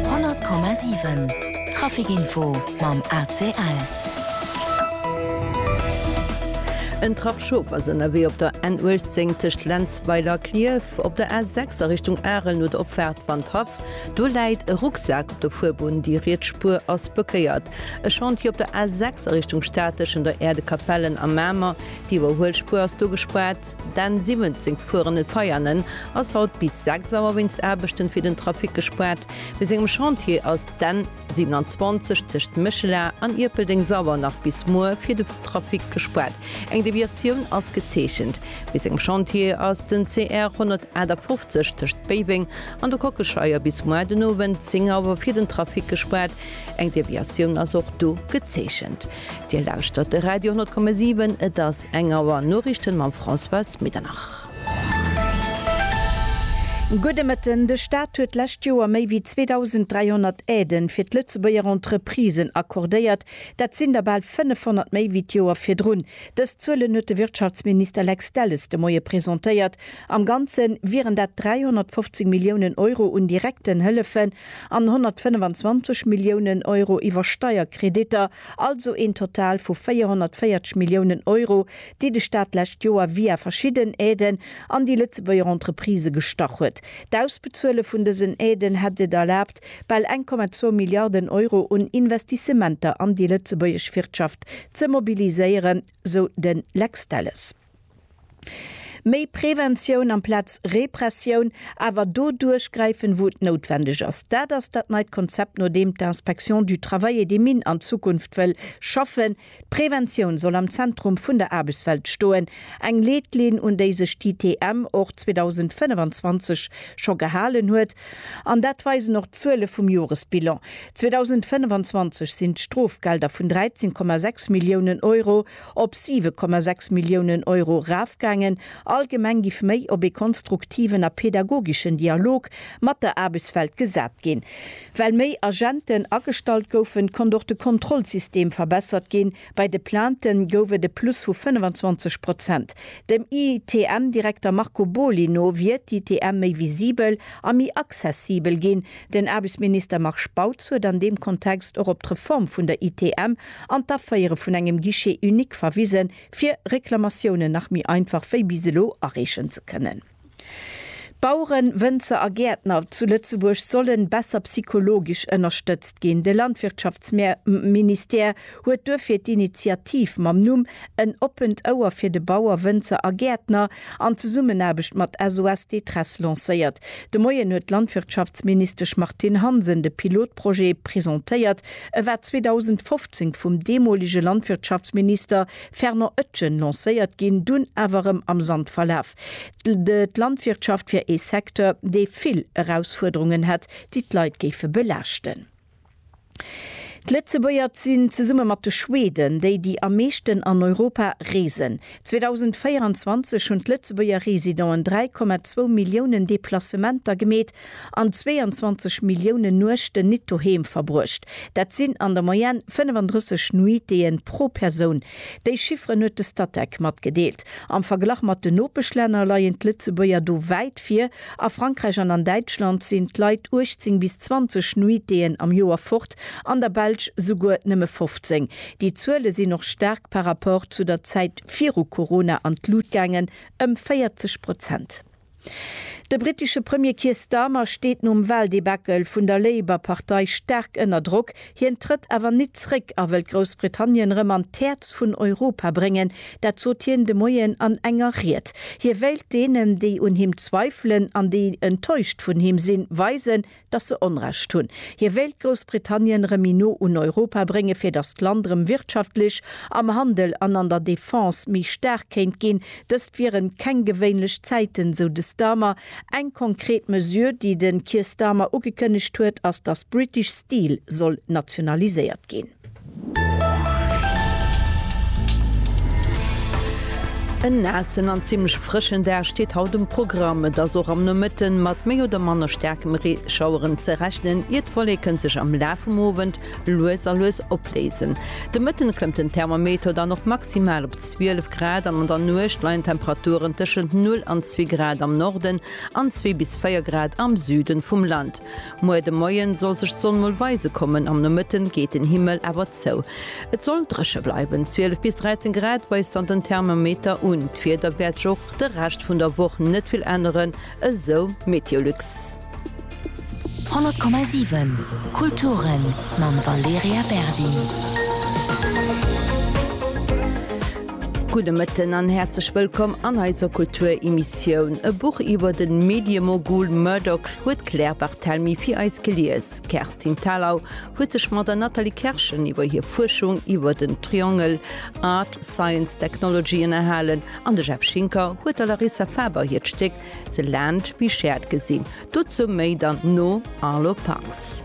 100,7 Trafic Info mam ACL. En Trapp Schof ass ënnerwee op der N 18 tëscht Lenzweiler a Klierf. Op der A 6 a Richtung Arel no der Opfaart Wandhaff, do läit e Rucksak op der Fuerbunn, déi riets Spuer ass blockéiert. E Chantier op der A 6 a Richtung Stad tëschen der Äerdekapellen a Mamer, déi iwwerhuel Spuer ass do gespaart. Den 17 gefuerenen Veianen ass haut bis 6 Auer wéinst Aarbechten fir den Trafic gespaart. Bei sengem Chantier ass d'N 27 tëscht Méchela an Ierpeldeng sauer nach bis muer fir de Trafic gespaart. Eng Deviatioun ass gezeechent. Bei sengem Chantier ass den CR 158 tëscht Béiweng an de Kockelscheier bis muer den Owend 10 Auer fir den Trafic gespaart. Eng Deviatioun ass och do gezeechent. Dir lauschtert de Radio 10,7. Et ass eng Auer. Noriichten mam Françoise Medernach. Gudde Mëtten. De Staat huet d'lescht Joer méi wéi 2.300 Aiden fir d'Lëtzebuerger Entreprisen accordéiert. Dat sinn der bal 500 méi wéi d'Joer virdrun. Dës Zuelen huet de Wirtschaftsminister Lex Delles de Moie presentéiert. Am Ganze wieren dat 350 Milliounen Euro un direkten Hëllefen an 125 Milliounen Euro iwwer Steierkreditter, also een Total vu 440 Milliounen Euro, déi de Staat d'lescht Joer via verschidden Aiden an déi Lëtzebuerger Entreprisë gestach huet. D'Ausbezuele vun dësen Aiden hätt et erlaabt, bal 1,2 Milliarden Euro un Investissementer an déi lëtzebuergesch Wirtschaft ze mobiliséieren, sou de Lex Delles. Méi Preventioun amplaz Repressioun, awer do duerchgräifen, wou et noutwendeg ass, dat ass dat neit Konzept, no deem d'Inspection du Travail et des Mines an Zukunft wëll schaffen. D'Preventioun soll am Zentrum vun der Aarbechtswelt stoen, eng Leetlinn, un déi sech d'ITM och 2025 scho gehalen huet. An dat weisen och d'Zuele vum Joresbilan. 2025 sinn d'Strofgelder vun 13,6 Milliounen Euro. op 7,6 Milliounen Euro erafgaangen, allgemeng giff méi op ee konstruktiven a pedagogeschen Dialog mat der Aarbechtswelt gesat ginn. Well méi Agenten agestallt goufen, konnt och de Kontrollsystem verbessert ginn, bei de Plainten gouf et e Plus vu 25 Prozent. Dem ITM-Direkter Marco Boly no wier d'ITM méi visibel a méi accessibel ginn. Den Aarbechtsminister Marc Spautz huet an deem Kontext och op d'Reform vun der ITM an d'Aféiere vun engem Guichet unique verwisen, fir Reklamatiounen nach méi einfach wéi bis elo areechen ze kënnen. Baueren, Wënzer a Gäertner zu Lëtzebuerg sollen besser psychologisch ënnerstëtzt ginn. De Landwirtschaftsministère huet duerfir d'Initiativ mam Numm En oppent Ouer fir de Bauer, Wënzer a Gäertner an Zesummenaarbecht mat SOS Détresse lancéiert. De Moien huet d'Landwirtschaftsministesch Martine Hansen de Pilotprojet presentéiert. E war 2015 vum deemolege Landwirtschaftsminister Fernand Etgen lancéiert ginn, dunn awer erëm am Sand verlaf. D'Landwirtschaft wier ee Secteur, dee vill Erausfuerderungen hätt, déi d'Leit géife belaaschten. D'Lëtzebuerger sinn zesumme mat de Schweden déi, déi am meeschten an Europa reesen. 2024 hunn d'Lëtzebuerger Residenten 3,2 Milliounen Deplacementer gemeet an 22 Milliounen Nuechten nit doheem verbruecht. Dat sinn an der Moyenne 35 Nuitéë pro Persoun. Déi Chifferen huet de Statec matgedeelt. Am Verglach mat den Nopeschlänner leien d'Lëtzebuerger do wäit vir. A Frankräich an an Däitschland sinn d'Leit 18 bis 20 Nuiteeën am Joer fort, an der Belsch souguer nëmme 15. Déi Zuele sinn och staark par rapport zu der Zäit viru Corona an d'Lut gaangen, ëm 40 Prozent. De brittesche Premier Keir Starmer steet nom Waldebacle vun der Labour-Partei staark ënner Drock, Hien trëtt awer nit zréck a wëllt Groussbritannien rëm an d'Häerz vun Europa bréngen. Dat sot hien de Moien an enger Ried. Hie wéilt deenen, déi un him zweifelen an déi enttäuscht vun him sinn, weisen, datt se Onrecht hunn. Hie wéilt Groussbritannien rëm méi no un Europa brénge fir datt d'Land rëm wirtschaftlech, am Handel an an der Defense méi staark kéint ginn. Dëst wieren keng gewéinlech Zäiten, sou de Starmer. Eng konkret Mesure, déi de Keir Starmer ugekënnegt huet, ass, datt British Steel soll nationaliséiert ginn. En naassen an zimmlech frëschen Dag steet haut um Programm. Et ass och am Nomëtte mat méi oder manner staarkem Reeschaueren ze rechnen, ier d'Wolleken sech am Laf vum Owend lues a lues opléisen. De Mëtten klëmmt den Thermometer dann och maximal op 12 Grad an an der Nuecht leien d'Temperaturen tëschent 0 an 2 Grad am Norden an 2 bis 4 Grad am Süden vum Land. Muer de Moien soll sech d'Sonn mol weise kommen, am Nomëtten geet den Himmel awer zou. Et soll dréche bleiwen, 12 bis 13 Grad weist dann den Thermometer un. D'Wieder wäert sech och de Rescht vun der Woch net vill änneren, Esou Meteolux. 100,7 Kulturen mam Valerija Berdi. Gudde Mëtten an häerzlech wëllkomm an eiser Kulturemissioun. E Buch iwwer de Mediemogul Murdoch huet d'Claire Barthelmy fir eis gelies. D'Kerstin Thalau huet sech mat der Nathalie Kerschen iwwer hir Fuerschung iwwer den Triangel Art, Science, Technology ënnerhalen An de Jeff Schinker huet der Larissa Faber hiert Stéck The Land We Shared gesinn. Dozou méi dann no Arlo Parks.